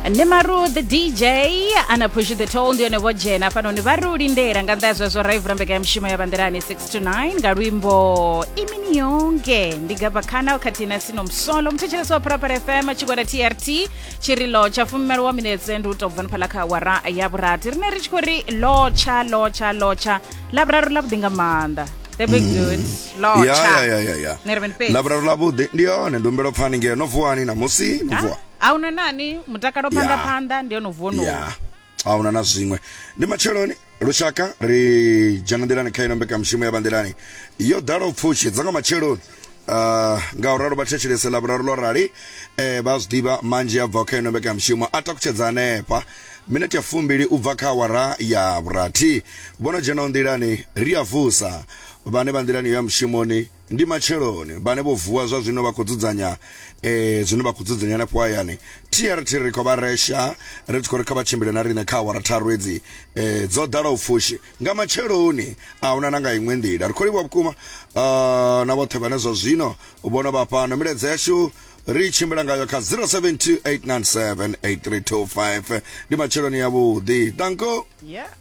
nemaru the dj ana push the toll ndi yone vho dzhena hafhanoni vha ri u lindela nga nnḓa ya zwezwo ra i vula mbekanyamishumo ya bandelani 6 to 9 nga luimbo imini yonke ndi gaba khana khathihi na sino msolo muthetshelesi wa pharapara fm tshigwada trt tshirilo tsha fumimalo wa minetse ndi u tou bva niphala kha awara ya vhurathi rine ri tshi khou ri lotsha lotsha lotsha lavhuraru lavhuḓi nga maanḓa the big good Lord, ya cha. ya ya ya ya Ni ri mini fhedzi? lavhuraru ḽa vhuḓi ndi yone ndi humbela u pfani ngeo no vuwani namusi no vuwa a una nani mutakalo phanḓa Ya. phanḓa ndi yono vuono ya ahuna na zwiṅwe ndi matsheloni lushaka ri dzhena nḓilani kha ino mbekanyamushumo ya vhanḓilani yo ḓala u pfushi dza nga matsheloni Uh, nga u ralo vha thetshelese ḽa vhuraru ḽo rali eh, vha zwi ḓivha manzhi a bvaho kha ino mbekanyamushumo a takutshedza hanefha minete ya fumbili u bva kha awara ya vhurathi vho no dzhenaho nḓilani ri a vusa Vhane vha nḓilani ya mushumoni ndi matsheloni, vhane vho vuwa zwa zwino vha khou dzudzanya e, zwine vha khou dzudzanya henefho hayani. TRT ri khou vha resha ri tshi khou ri kha vha tshimbile na riṋe kha awara tharu hedzi e, dzo ḓalaho pfushi nga matsheloni, a huna na nga iṅwe nḓila. Ri khou livhuwa vhukuma a, na vhoṱhe vhane zwa zwino vho no vha fhano. Milaedza yashu ri tshimbila ngayo kha 0728978325 ndi matsheloni ya vhuḓi. Danko. Yeah.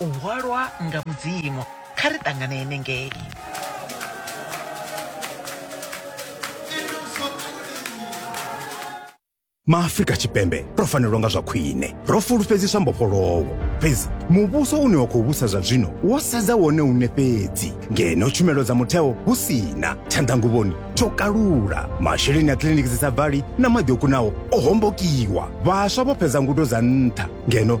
U hwalwa nga Mudzimu. Kha ri ṱangane henengei. maafrika tshipembe ro fanelwa nga zwa khwine ro fulufhedziswa mbofholowo fhedzi muvhuso une wa khou vhusa zwa zwino wo sedza wone une fhedzi ngeno tshumelo dza mutheo hu si na tshanḓanguvhoni tsho kalula masheleni a kiliniki dzi sa bvali na maḓi o kunaho o hombokiwa vhaswa vho fhedza ngudo dza nṱha ngeno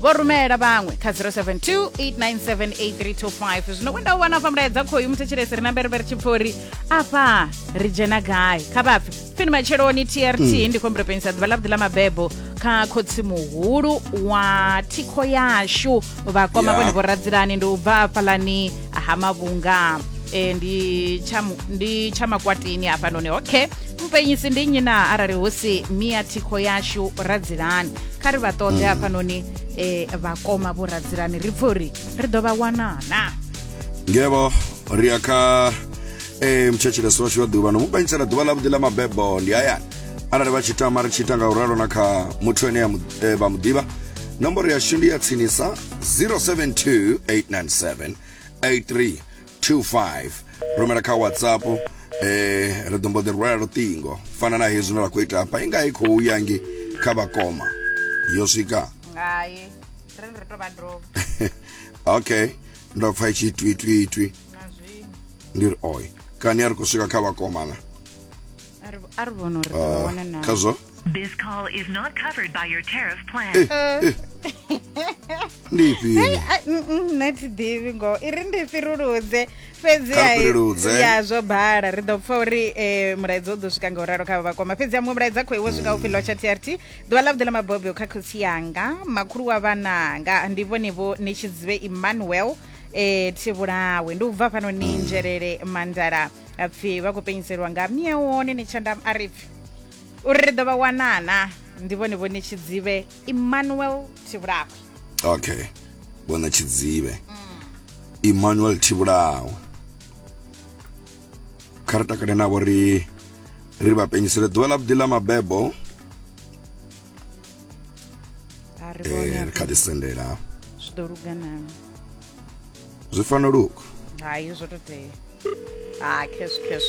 vho rumela vhaṅwe kha 0728978325 zwino wenda u wana afha mulaedza khoyu muthetshelesi ri na mberevere tshipfori afha ri dzhena gai kha vhapfi pfini matsheloni trt mm. ndi khombiro penisa ḓuvha ḽavhuḓi ḽa mabebo kha khotsi muhulu wa thikho yashu vhakoma vhone vho radzilani ndi u bva hafhalani ha mavhunga eh, ndi tsha mu- ndi tsha makwatini hafhanoni okay mpenyisi ndi nnyi na arali hu si mia thikho yashu radzilani kha ri vha ṱoḓe hafhanoni eh, vhakoma vho radzilani ri pfe uri ri ḓo vha wana na ngevho ri ya kha e, mtshetshelesi washu wa ḓuvha no mu panyisela ḓuvha ḽavhuḓi ḽa mabebo ndi hayani arali vha tshi tama ri tshi ita nga u ralo na kha muthu ene ya mu- e, vha mu ḓivha nomboro yashu ndi ya tsinisa 072 897 83 25 rumela kha whatsapp eh ri ḓo mbo ḓi rwela luṱingo fana na hezwi no la khou ita hafha i nga i khou ya ngi kha vhakoma yo swika ngai ri ri to vha dovha okay ndo pfa i tshi twi twi twi na zwino ndi ri oi kani a ri khou swika kha vhakomana a ri- a ri vhona uri ri ḓo wana na khazwo This call is not covered by your tariff plan. Eh, eh. ndi ifhio Hey, a- mm, mm, nṋe thi ḓivhi ngoho i ri ndi fhiruludze fhedzi Kha ri fhiruludze. ai- ya zwo bala ri ḓo pfa uri eh, mulaedza u ḓo swika nga u ralo kha vhakoma fhedzi ya muṅwe mulaedza khou iwo swika upfi lotsha trt ḓuvha ḽa vhuḓi ḽa mabobyo kha khotsi yanga makhulu wa vhananga ndi vhone vho ni tshi dzive emmanuel eh thi vhulawe ndi u bva fhano ni nzhelele mandala apfi vha khou penyiselwa nga miewone ni tshandam aripfi uri ri ḓo vha wana na ndi vhone vhone tshidzivhe emmanuel thivhulawe okay vhone tshidzivhe emmanuel thivhulawe kha ri takale navho ri ri vha penyisele ḓuvha ḽa vhuḓi ḽa mabebo a ri eh, vhone ri kha ḓi sendela zwi ḓo lugana zwi fanela uku hai zwo to tea ha cash cash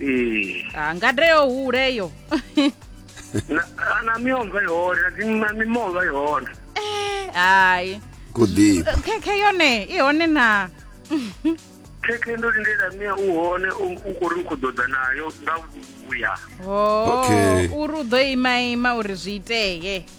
ee Ah, ngade yo hule yo na a na miomva ihone na dzi- na mimova ihone hayi kuḓi khekhe yone i hone na khekhe ndo lindela mia u hone u u khou ri u khou ḓoḓa nayo nga vhuya ho Okay. uri u ḓo ima ima uri zwi itee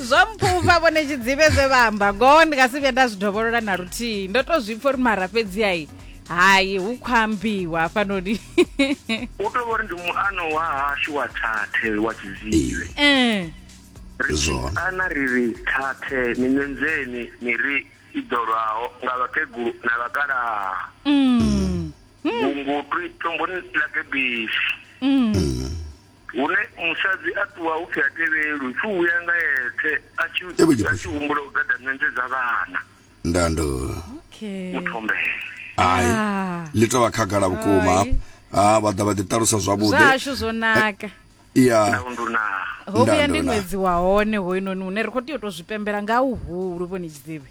zwo mpfhufha vhone tshidzivhe zwe vha amba ngoho ndi nga si vhuya nda zwi dovholola na luthiyi ndo to zwi pfha uri mara fhedzi ai hai hu khou ambiwa hafhanoni u tou vhori ndi muano wa hashu wa thathe wa tshiziwe Eh, zwone ana ri ri thathe miṋenzeni miri i ḓolwaho nga vhakegulu na vhakalaha mm, vhungutwi tomboni ḽa gebisi mm. Hune musadzi a ṱuwa hu pfi ha tevhelwi, pfi u vhuya nga eṱhe a tshi Ewe a Jephusha. tshi humbula u gada ṋenje dza vhana nda ndo okay muthombele. ai Ah. ḽi tovha khagala vhukuma Ai. ha vha ḓa vha ḓi ṱalusa zwa zwavhuḓi hashu zwo naka ya Ndau ndu na ho vhuya ndi Ndandona. ṅwedzi wa hone hoyunoni hune ri khou tea u tou zwi pembela nga huhulu vhoni tshidzivhi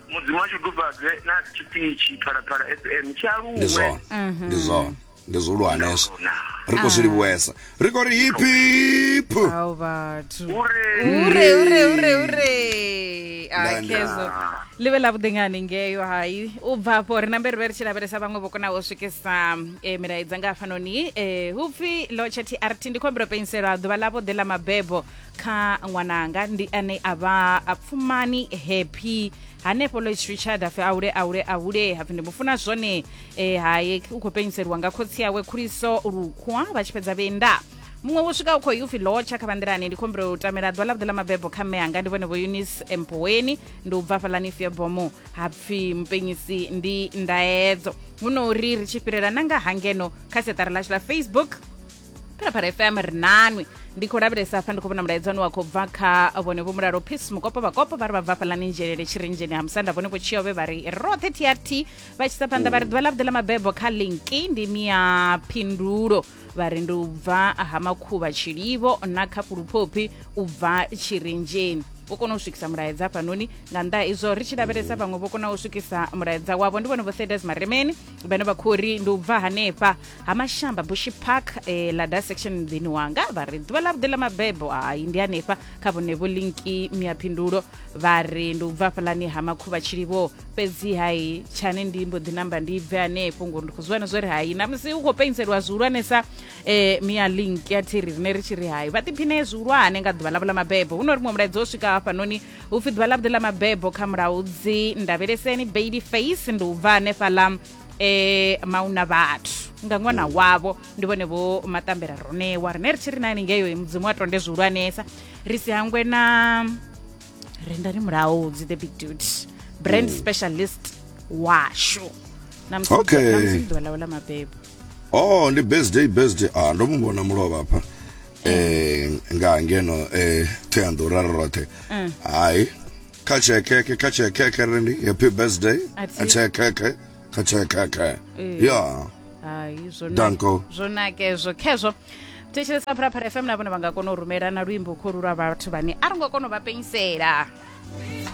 mudzimu a shudufhadze na tshipitshi phalaphala fm tshi aluwe ndi zwone mhm. ndi zwone ndi zwihulwaneso ri khou zwi livhuwesa ri khou ri hip hip kezo ḽi vhe ḽa vhuḓi nga hanengeyo hai u bva afho ri nambe ri vhe ri tshi lavhelesa vhaṅwe vho konaho u swikisa um eh, milaedza nga hafhanoni um eh, hu pfi lotsha trt ndi khombiro penselwa ḓuvha ḽa vhuḓi ḽa mabebo kha ṅwananga ndi ane a vha a pfumani happy hanefho lois richard hapfi aule aule aule hapfi ndi mufuna zwone e, haye u khou penyiseliwa nga khotsi yawe khuliso lukhwa vha tshi fhedza vhenda muṅwe wo swika u khou upfi lotsha kha vhanḓilani ndi khombelo u tamela ḓuvha ḽavhuḓi ḽa mabebo kha mme anga ndi vhone vho eunice empoweni ndi u bva hafhalani fiebomo hapfi mupenyisi ndi ndaedzo huno uri ri tshi fhirela na nga hangeno kha seṱara ḽashu ḽa facebook phalaphala fm ri nanwi ndi khou lavhelesa hafha ndi khou vhona mulaedza une wa khou bva kha vhone vho mulalo peace mukopo vhakopo vha ri vha bva fhalani nzhelele tshirinzheni ha musanda vhone vho tshiove vha ri roṱhe trt vha tshisa phanḓa vha ri ḓuvha ḽa vhuḓi ḽa mabebo kha linki ndi mia phindulo vha ri ndi u bva ha makhuvha tshilivo na kha fhuluphophi u bva tshirinzheni vho kona u swikisa mulaedza hafhanoni nga nnḓa izwo ri tshi lavhelesa vhaṅwe vho kona u swikisa mulaedza wavho ndi vhone vho thedas maremeni vhane vha khou ri ndi u bva hanefha ha mashamba bushi park eh, lada section muḓini wanga vha ri ḓuvha ḽa vhuḓi ḽa mabebo hai ndi hanefha kha vhonevo linki miaphindulo vha ri ndi u bva fhalani ha makhuvha tshilivho fhedzi hai tshane ndi mbo ḓi namba ndi bve hanefho ngori ndi khou zwiwana zwo ri hai na musi u khou pentseliwa zwihulwanesa eh, mia link ya thiri rine ri tshi ri hai vha ḓiphine zwihulwane nga ḓuvha ḽavho ḽa mabebo hu no ri muṅwe mulaedza o swika hafhanoni hu pfi ḓuvha ḽavhuḓi ḽa mabebo kha mulaudzi ndavheleseni baby face ndi u bva hanefhaḽa um eh, mauna vhathu nga ṅwana wavho ndi vhone vho maṱambela ronewa rine ri tshi ri nani ngeyo mudzimu a tonde zwihulwanesa ri si hangwe na rendani mulaudzi the big dude brand specialist washu na musi Okay. ḓuvha ḽawe ḽa mabebo oh ndi best day best day ah ndo mu vhona mulovha hafha eh nga ngeno eh Thohoyandou ra ri roṱhe hai kha tshekeke kha tshekeke ri ndi happy birthday A thi- kha tshekeke kha tshekeke Eh. ya hai zwo na- Danko. zwo naka ezwo khezwo thetshelesa phalaphala fm na vhone vha nga kona u rumela na luimbo kholu lwa vhathu vhane a ro ngo kona u vha penyisela